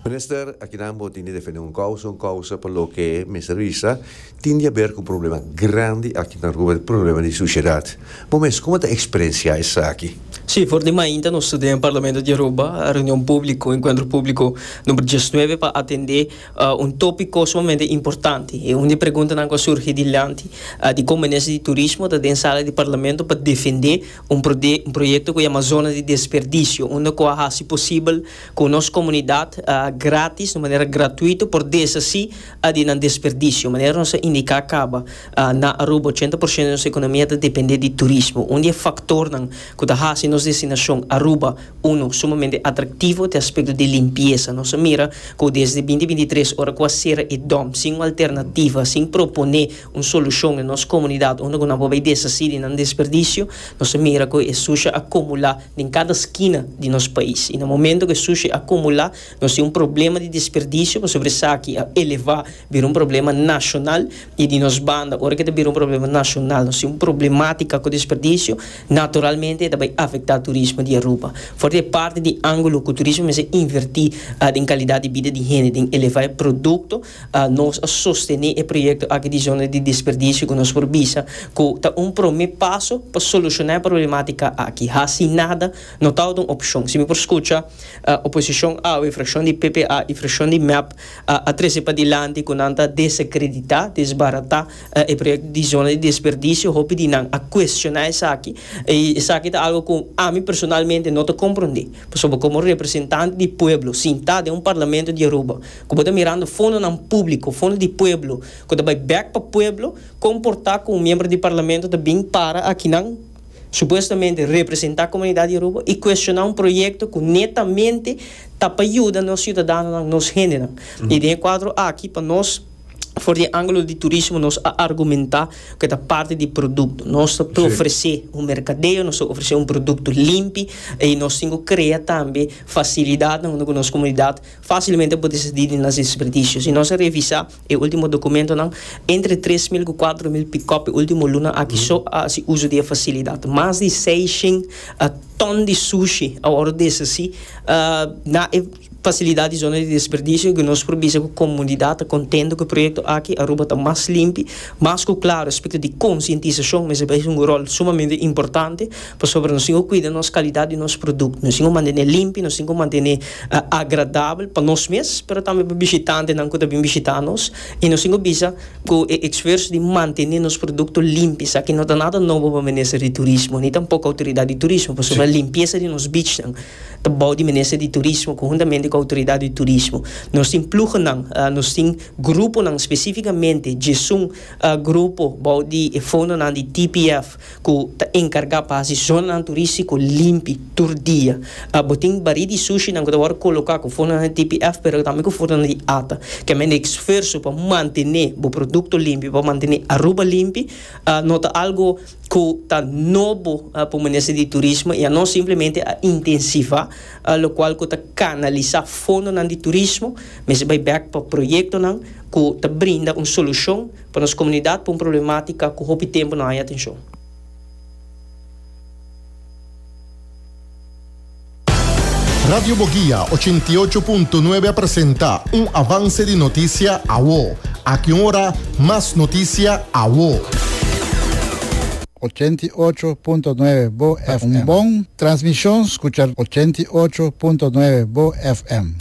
Minister, akinan bo tin di defende un kousa, un kousa pa loke mester bisa tin di haber ku un problema grandi aki na Aruba, e problema di sushedat. Bo mes, komo ta eksperensiá esaki? Sí, for di mainta nos ta den Parlamento di Aruba, reunion públiko, enkuentro públiko number diesnuebe pa atendé un tópiko sumamente importante. E un di e preguntanan ku a surgi dilanti, dikon Minister di Turismo ta den sala di Parlamento pa defendé. Un proyekto ku yama Zona di Desperdisio unda ku a hasi posibel ku nos komunidat gratis, di manera gratuito, por desasi di nan desperdisio. Manera nos a indiká kaba, na Aruba ochenta por shento di nos ekonomia ta dependé di turismo. Un di e faktornan ku ta hasi nos destinashon Aruba Uno sumamente atraktivo ta e aspekto di limpiesa. Nos a mira ku desde binti binti tres ora ku a sera e dòm sin un alternativa, sin proponé un solushon den nos komunidat unda ku nan por bai desasí di nan desperdisio, nos a mira ku e sushi a kumulá den kada skina di nos pais. I na momentu ku e sushi a kumulá, nos tin un problema di desperdisio pasobra esaki a elevá bira un problema nashonal. I di nos banda, ora ke ta bira un problema nashonal, nos tin un problemátika ku desperdisio, naturalmente e ta bai afektá turismo di Aruba. For di e parti di ángulo ku turismo mester invertí den kalidat di bida di hende, den elevá e produkto, Nos a sostene e proyekto aki di zona di desperdisio ku nos por bisa ku ta un promé paso pa solushoná e problematika aki. Hasi nada no tabata un opshon. Si mi por skucha, oposishon awe, frashon di ppa i frashon di mep, a trese padilanti ku nan ta desakreditá, desbaratá, e proyekto di zona di desperdisio. Hopi di nan a kuestioná esaki i esaki ta algu ku ami personalmente no ta komprondé. Pasobra komo representante di pueblo sintá den un parlamento di Aruba, ku bo ta mirando fondonan públiko, fondo di pueblo, ku ta bai bèk pa pueblo, komportá ku un miembro di parlamento ta bin para akinan, supuestamente representá komunidat di Aruba, i kuestioná un proyekto ku netamente ta pa yuda nos siudadanonan, nos hendenan. I den e kuadro aki, pa nos, for di e ángulo di turismo, nos a argumentá ku e ta parti di produkto. Nos ta ofresé un merkadeo, nos ta ofresé un produkto limpi, i nos tin ku krea tambe fasilidatnan unda ku nos komunidat Facilmente por descidi di nos desperdicio. Si nos a revisa e ultimo documentonan, entre tres mil cu cuatro mil pick-up e ultimo luna aki so a haci uzo di e facilidad. Mas di seiscind ton di sushi a worde deshaci na e facilidad di zona di desperdicio cu nos por bisa cu comunidad ta contento cu e proyecto aki. Aruba ta mas limpi, mas cu claro respecto di concientisacion mester bay hunga rol sumamente importante. Pasobra nos tin ku kuida nos kalidat di nos produkto, nos tin ku mantené limpi, nos tin ku mantené agradabel pa nos mes, pero tambe pa bishitantenan ku ta bin bishitá nos, i nos tin ku bisa ku e esfuerso di mantené nos produkto limpi esaki no ta nada nobo pa minister di turismo ni tampoco outoridat di turismo pasobra limpiesa di nos bichnan ta bou di minister di turismo konhuntamente ku outoridat di turismo. Nos tin pluhonan, nos tin gruponan spesifikamente djesun grupo bou di e fondonan di TPF. ku ta enkargá pa hasi zonanan turístiko limpi tur dia. Bo tin barí di sushinan ku ta wòrdu koloká ku fundanan di TPF pero tambe ku fundanan di ata. Ke men di esfuerso pa mantené bo produkto limpi, pa mantené Aruba limpi, no ta algu ku ta nobo pa Minister di Turismo i a nos simplemente a intensivá lokual ku ta kanalisá fondonan di turismo mester bai bèk pa proyektonan ku ta brinda un solushon Pa nos komunidat pa un problematika ku hopi tempu no haña atenshon. Radio Bogia ochenta i ocho punto nuebe a presenta un avanse di notisia awo. Aki un ora mas notisia awo. Ochenta i ocho punto nuebe Bo FM. Pa un bon transmishon skucha ochenta i ocho punto nuebe Bo FM.